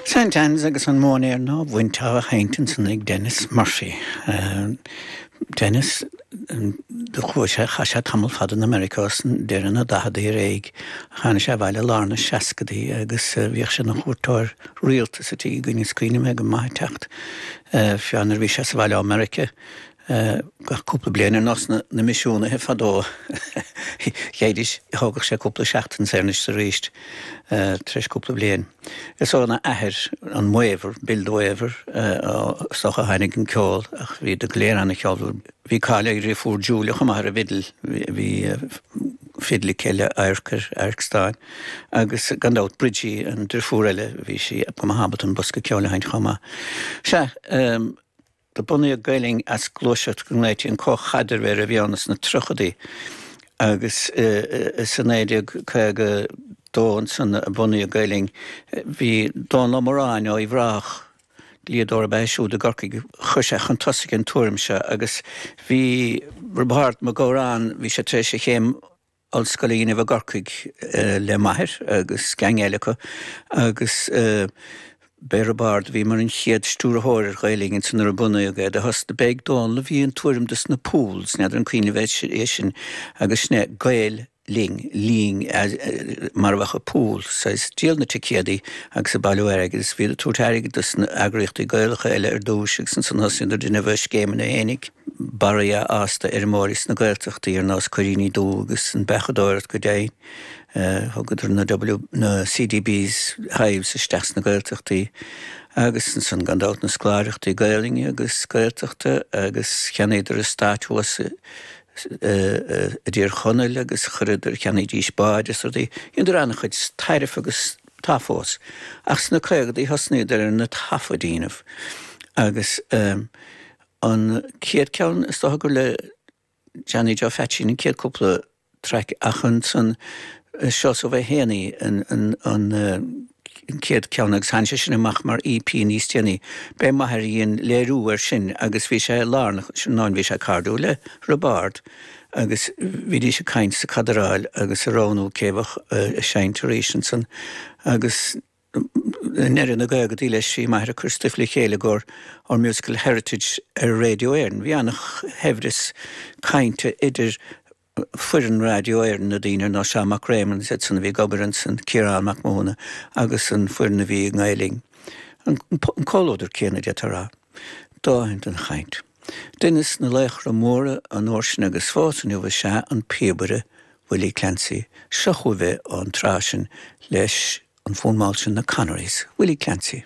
Saint Anne's agus an Móinéar Nua-Bhainte á sheinnt ansan ag Denis Murphy. Denis, do chuaigh sé, chaith sé tamall fada in America ós deireadh na daicheadaí ar aghaidh, ach tháinig sé abhaile i lár na seascadaí agus bhíodh sé ina chuairteoir rialta sa tigh againne, is cuimhin liom é go maith ag teacht, fiú amháin nuair a bhí sé sa bhaile ó America, Gach cúpla bliain, ar nós na misiúnaithe fadó, gheibhdís, thógadh sé cúpla seachtain, 's thar n-ais arís, tar éis cúpla bliain. Is óna athair, an Waiver, Bill the Waiver, is dócha a tháinig an ceol, ach bhíodar go léir an-cheolmhar. Bhí cáil ar a dhriofúr Julia chomh maith ar an bhfidil, bhí fidil aici le adharc air, adharc stáin, agus gan dabht Bridgie, an driofúr eile, bhí sí go maith ábalta an bosca ceoil a sheinnt chomh maith. Sea. Do bunaíodh Gael-Linn as gluaiseacht go nglaoití an Comhchaidreamh air a bhí ann sna triochadaí agus is i 1952 ansan a bunaíodh Gael-Linn. Bhí Dónal Ó Moráin ó Uíbh Ráthach, dlíodóir ab ea é siúd i gCorcaigh, chuir sé chun tosaigh an tuairim seo agus bhí Roibeárd Mac Góráin, bhí sé tar éis a chéim ollscoile a dhéanamh i gCorcaigh le m'athair agus geaing eile acu agus b'é Roibeárd a bhí mar an chéad stiúrthóir ar Ghael-Linn ansin nuair a bunaíodh é. Do thosnaigh, b'é ag Dónall a bhí an tuairim dos na pools, n'fheadar an cuimhin libh é sin agus sin é Gael Linn, Linn mar a bheadh i pool, saghas díol na ticéadaí agus ag bailiú airgid agus bhíodar ag tabhairt airgid dos na eagraíochtaí Gaelacha eile ar dtúis agus ansan thosaíodar, dheineadar scéimeanna féinig. barraí a fhás d'fheirmeoirí sna Gaeltachtaí ar nós cuiríní dubha agus an beachadóireacht go deimhin. Thugadar na W, na CDB's, hives isteach sna Gaeltachtaí agus ansan gan dabht na scoláireachtaí Gaelainne agus Gaeltachta agus cheannaíodar eastát thuas i dTír Chonaill agus chuireadar, cheannaídís báid is rudaí. Dheineadar an-chuid tairbhe agus tá fós. Ach sna caogadaí thosnaíodar ar na taifid a dhéanamh agus eh. An chéad ceann, is dócha gur le Johnny Joe Pheaitsín an chéad cúpla traic ach ansan Seosamh Ó hÉanaí an chéad ceann agus tháinig sé sin amach mar EP níos déanaí. B'é m'athair a dhein léiriú air sin agus bhí sé lárnach ansin nó bhí sé cairdiúil le Roibeárd agus bhídís ag caint is ag cadráil agus ag roghnú cé bheadh ag seinnt arís ansan agus ndeireadh na gcaogaidí leis bhí m'athair ag cur stuif le chéile i gcomhair Our Musical Heritage ar Radio Éireann. Bhí ana shaibhreas cainte idir foireann Radio Éireann, na daoine ar nós Seán Mac Réamoinn, is iad san a bhí ag obair ansin, Ciarán Mac Mathúna agus an foireann a bhí i nGael-Linn. An comhluadar céanna, d'fhéadfá a rá. Dóthain den chaint. Duine de laochra móra an uair sin agus fós inniu is ea an píobaire Willie Clancy. Seo chugaibh é ón tsraith sin leis an bhfonn mall sin 'Na Connerys', Willie Clancy.